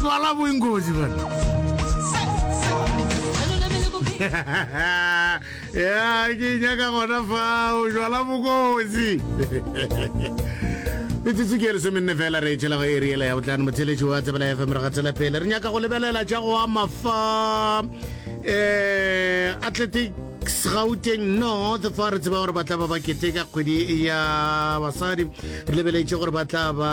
swala boingoji bana ya ke nyaka gona fao jala bokosi metsotso ke lesomenne fela re etšhela go e riela ya botlano motheletši wa tsebela ya fm re ga tsela pele re nyaka go lebelela tša go ama fa um eh, athletic gauteng north fa re tseba gore ba tla ba ba keteka kgwedi ya basadi re lebeletse gore ba tla ba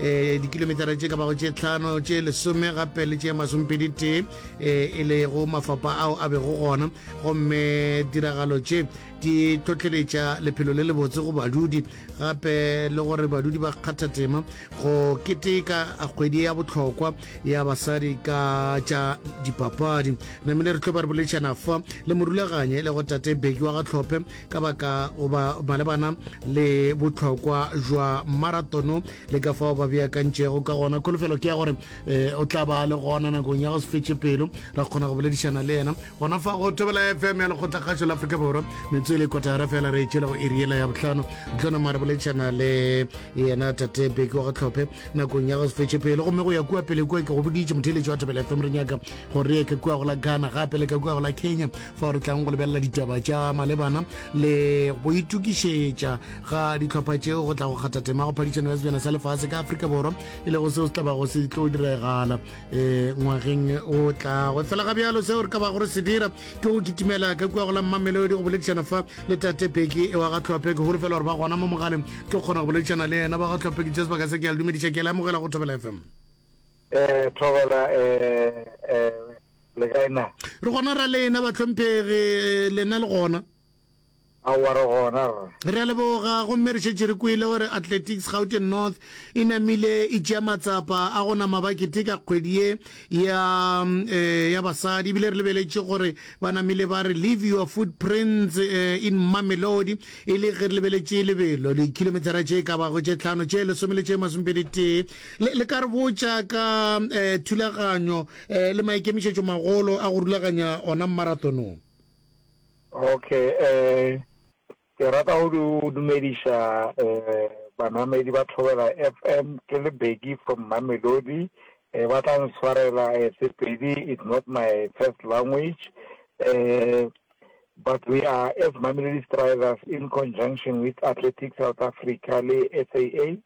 eh, dikilometara tše ka bago tše tlhano tše lesome gape le tše masompedi tee um eh, e lego mafapa ao a bego gona gomme diragalo tše di tlhotlheletša lephelo le lebotse go badudi gape le gore badudi ba kgatha tema go keteka kgwedi ya botlhokwa ya basadi ka tša dipapadi namile re tlo ba re boledišana fa le morulaganye le go tate beki wa gatlhophe ka baka goba malebana le bohlokwa jwa maratono le ka fao ba beakantšego ka gona kholofelo ke ya gore um o tla ba le gona nakong ya go se fetše pelo ra kgona go boledišana le yena gona fa go thobela fm ya lekgotlakgašo la afrika borwa metswe le kotara fela re etšela go eriela ya botlhano tlona mare boledišana le yena tate beke wa go tlhophe nakong ya go se fetše pelo gomme go ya kua pele kua ke go boditše motheletši wa thobela fm re nyaka gore re ye ka kua go la ghana gape le ka kua go la kenya fao re tlang go lebelela ditaba tša malebana le go itukišetša ga ditlhopha tšeo go tla go kgatha tema go phadišano ya sebjana sa lefase ka afrika borwa e lego seo se tlabago se tlo diregala um eh, ngwageng o tlago fela ga bjalo seo re ka bago re se dira ke go kitimela ka kua go la mmamelodi go boledišana fa le tate peki e wa ga tlhophe ke holofela gore ba gona mo mogaleng ke kgona go boledišana le yena ba ga tlhophe ke jesebaka se ke ya le dumediša ke le amogela go thobela fm um eh, thobela um Le kae na? Re gona ra lena bahlomphegi, lena le gona? Aowa re gona rra. Re a leboga, gomme re šetše re kwele gore Athletics Gauteng North e namile e tšea matsapa a go nama ba keteka kgwedi ye ya um ya basadi, ebile re lebeletše gore ba namile ba re Leave Your Footprints um in Mamelodi, e le ge re lebeletše lebelo, dikhilometara tše e ka bago tše hlano, tše lesome le tše masomepedi tee. Le, le ka re botša ka um thulaganyo Eh, le maikemišetšo magolo a go rulaganya ona mmaratonong. Okay, eh, ke rata go du, dumediša eh, banamedi ba Thobela FM, ke le Beki from Mamelodi, eh, ba tla nswarela eh, Sepedi is not my first language, eh, but we are as Mamelodi Strivers in conjunction with Athletics South Africa le SAA,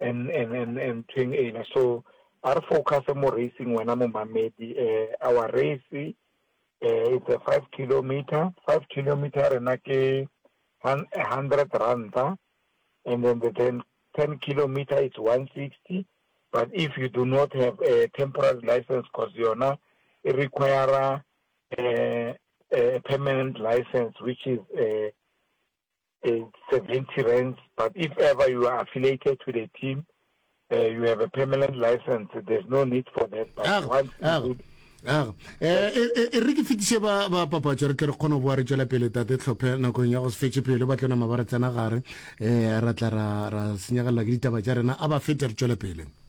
and and and and thing ena so a re focus mo racing wena momamedi eh our race eh it's a 5 kilometer 5 kilometer rena ke 100 rand and then the 10 10 kilometer it's 160 but if you do not have a temporary license because yona it require a, eh, a permanent license which is a, eh, uh, 70 rands. But if ever you are affiliated to the team, uh, you have a permanent license. There's no need for that. But ah, once ah. you aga eh, eh, eh, e re ke fetise ba papatso re tle re kgone go boa re tswela pele tate tlhophe nakong ya go se fetse pele ba tlona maba re tsena gare um ra tla ra senyegelela ke ditaba tša rena a ba fete re tswele pele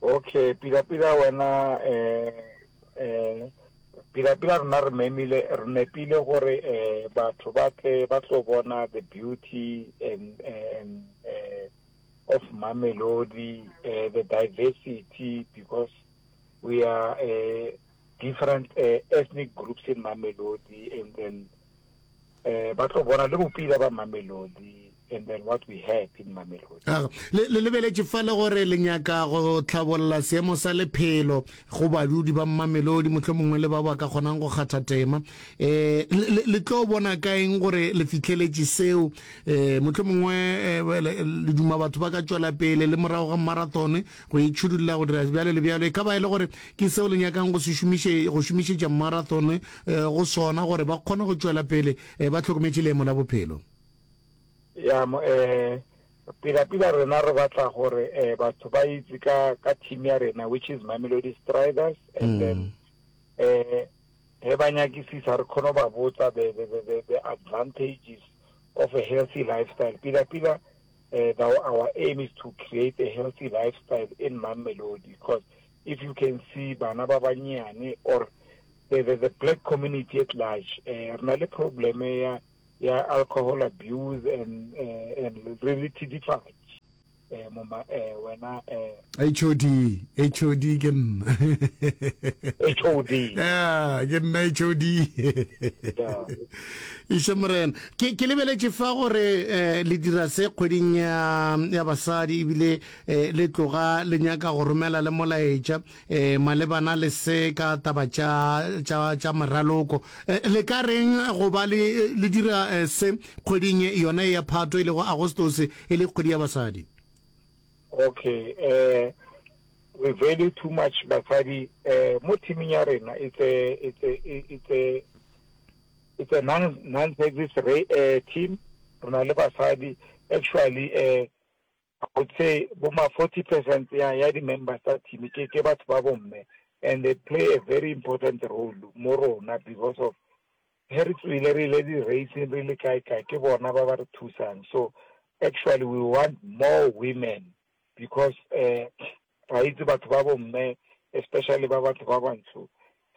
Ok, pila pila wena eh eh pila pila rena re memile re nepile gore eh batho ba tle ba tlo bona the beauty and and eh of Mamelodi eh the diversity because we are eh different eh, ethnic groups in Mamelodi and then Eh, ba tlo bona le bopila ba mamelodi and then what we had in mamelodi ah, le lebeletše fa le gore le nyaka go tlhabolola seemo sa lephelo go badudi ba mamelodi motlho mongwe le ba ba ka kgonang go kgatha tema um le tlo bona ka eng gore le fitlheletše seo um eh, motlho mongwe eh, le duma batho ba ka tšwela pele le morago ga marathone go itšhudulela go dira bjalo le bjalo e ka ba e le gore ke seo le nyakang go se šomiše go šomišetša marathone go sona gore ba kgone go tšwela pele ba hlokometše leemo la bophelo. Ya, pila-pila rena re batla gore batho ba itse ka ka team ya rena which is Mamelodi Striders and then eh he ba nyakisisa re kgone ba botsa the, the, the, the, the advantages of a healthy lifestyle pila pila uh, the, our aim is to create a healthy lifestyle in Mamelodi because if you can see bana ba banyeane or the, the, the black community at large eh, re na le problem ya ya alcohol abuse and uh, and re re thidifatse eh mama eh wena eh HOD HOD ke nna HOD yeah ke nna HOD ishe morena ke ke lebeletše fa gore eh le dira se kgweding ya ya basadi ebile e, le tloga le nyaka go romela le molaetša e, malebana le se ka taba tša, tša, tša meraloko. E, le ka reng go ba le, le dira e, se kgweding e, yona e ya Phatwe e lego Agostose e le kgwedi ya basadi? Okay, eh, we value too much basadi eh, mo teaming ya rena it's a, it's a, it's a, it's a non, non-service re, eh, team. Re na le basadi actually eh, I would say bo ma forty percent ya ya di members tsa team ke ke batho ba bomme and they play a very important role mo rona because of he re tswile re ile di racing re le kae kae ke bona ba ba re thusang so actually we want more women because uh, Re a itse batho ba bomme especially ba batho ba bantsho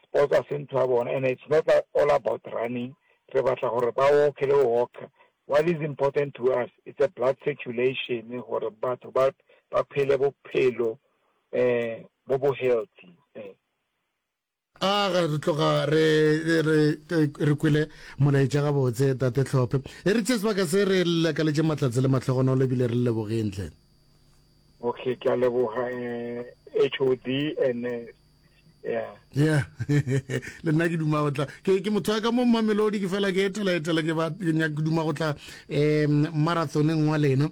sports ga se ntho ya bona and it's not all about running re batla gore ba walk le go walker what is important to us it's a blood circulation gore batho ba ba phele bophelo eh bo bo healthy eh A ga re tloga re re re re kwele molaetša gabotse tate Tlhophe. E re tše sebaka se re lakaletše matlatse le mahlogonolo ebile re le lebogeng hle. Okay, ke a leboga eh, HOD and eh, yeah. Yeah. Le nna ke duma go tla. Ke ke motho wa ka mo Mamelodi ke fela ke etela etela ke ba ke nyaka ke duma go tla eh marathoneng wa lena.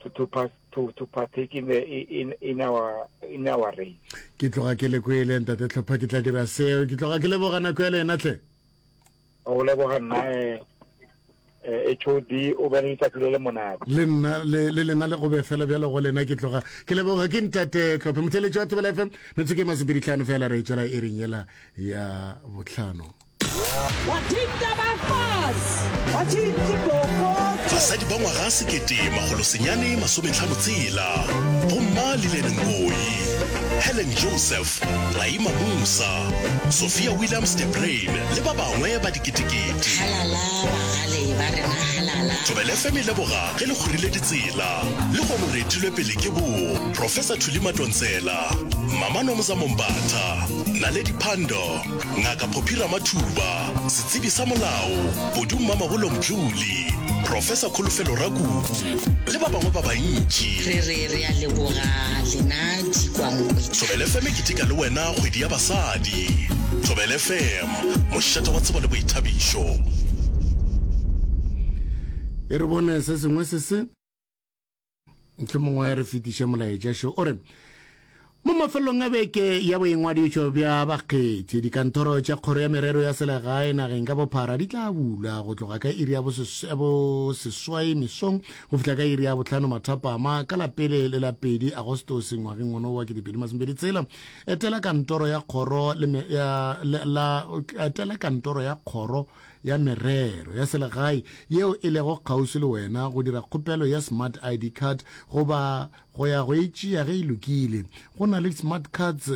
to, to, pass, to, to partake in, the, in, in, our, in our race. ke tloga ke le kwele ntate tlhopha ke tla dira seo ke tloga ke leboga nako ya le yena tle o leboga nna eh, eh, hod o bene letsatsi le le monate le nna le le lena le gobe fela bjalo go lena ke tloga ke leboga ke ntate tlhophe motheletši wa tebela fm metsotso ke masepeditlhano fela re e tswela e reng yela ya botlhano Basadi ba ngwaga sekete makgolo senyane masometlhano tshela, Bomma Lillian Ngoyi, Helen Joseph, Raima Musa, Sophia Williams de Bruyn le ba bangwe ba diketekete. Halala bagale ba rena halala. Thobela FM e leboga ge le kgorile ditsela le go no re etilwe pele ke bo Professor Thuli Matontsela, Mama Nomza Mombatha, Naledi Pandor, Ngaka Phophi Ramathuba, setsebi sa molao Bodu Mmamabolo Mdluli, Profesa Kholofelo Rakubu le ba bangwe ba bantši. Re re re a leboga lena dikwankwe. Thobel FM e keteka le wena kgwedi ya basadi. Thobel FM, mošate wa tsebo le boithabišo. E re bone se sengwe se se. mongwe re fetiše molaetša šo o re mo mafelelong a beke ya boingwadišo bja bakgethi dikantoro tša kgoro ya merero ya selegae nageng ka bophara di tla bula go tloga ka iri ya boseswai mesong go fihla ka iri ya botlhano mathapama ka lapele le la pedi agostose ngwageng ono wa kedipedi masomedi tsela etela kantoro ya kgoro ya Merero ya Selegae yeo e lego kgauswi le wena go dira kgopelo ya Smart ID Card goba go ya go e tšea ge e lokile. Go na le di-smart cards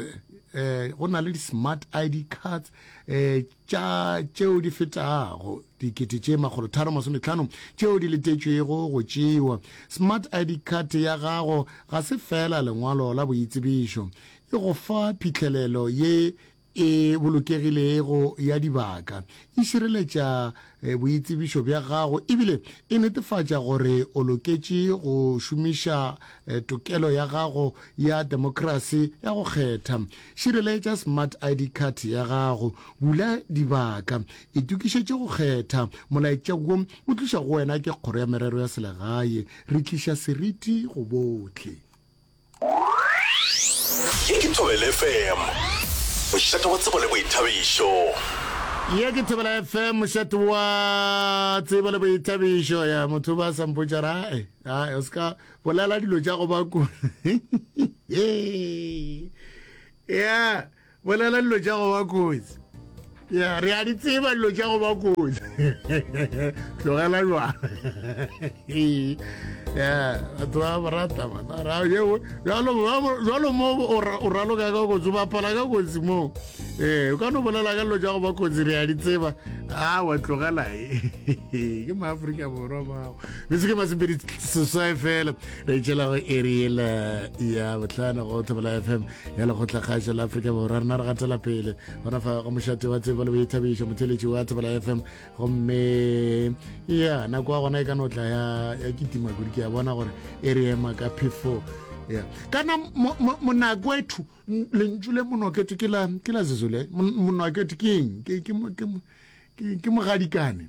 eh, go na le di-smart ID cards eh, tša tšeo di fetago dikete tše makgolo tharo masometlhano tšeo di letetšwego go tšewa. Smart ID card ya gago ga se fela lengwalo la boitsebišo, e go fa phihlelelo ye E bolokegilego ya dibaka, e šireletša boitsebišo bja gago ebile e netefatša gore o loketše go šomiša tokelo ya gago ya demokrasi ya go kgetha. Šireletša Smart ID Card ya gago, bula dibaka, itokišetše go kgetha. Molaetša wo o tlišwa go wena ke Kgoro ya Merero ya Selegae. Re tliša seriti go bohle. Ye ke Thobela FM, mošate wa tsebo le boithabišo. Ye ke Thobela FM, mošate wa tsebo le boithabišo. Ya motho ba sa mpotša ra e a o ska bolela dilo tša go ba ku. Yeah. Bolela dilo tša go ba kotsi. Ya, re a di tseba dilo tša go ba kotsi. Tlogela jwana. Ya, batho ba ba rata bana. Ra yeo, jalo jalo mo o raloka ka kotsi, o bapala ka kotsi mo. Eh, o ka no bolela ka dilo tša go ba kotsi re a di tseba. Ah, wa tlogela e. Ke ma Afrika Borwa bao. Re se ke ma sepedi seswae fela. Re tšela go area ya botlhano go Thobela FM. ya lekgotla kgaetša la afrika borwa rena re gatela pele gona fa go mošate wa tsebo le boithabišo motheletši wa tsebela f m gomme ya nako ya gona e ka notla ya kitima kudu ke ya bona gore e re ema ka phefo ya kana monako ethu lentšu le monokete ke la zezole monokete ke eng ke mogadikane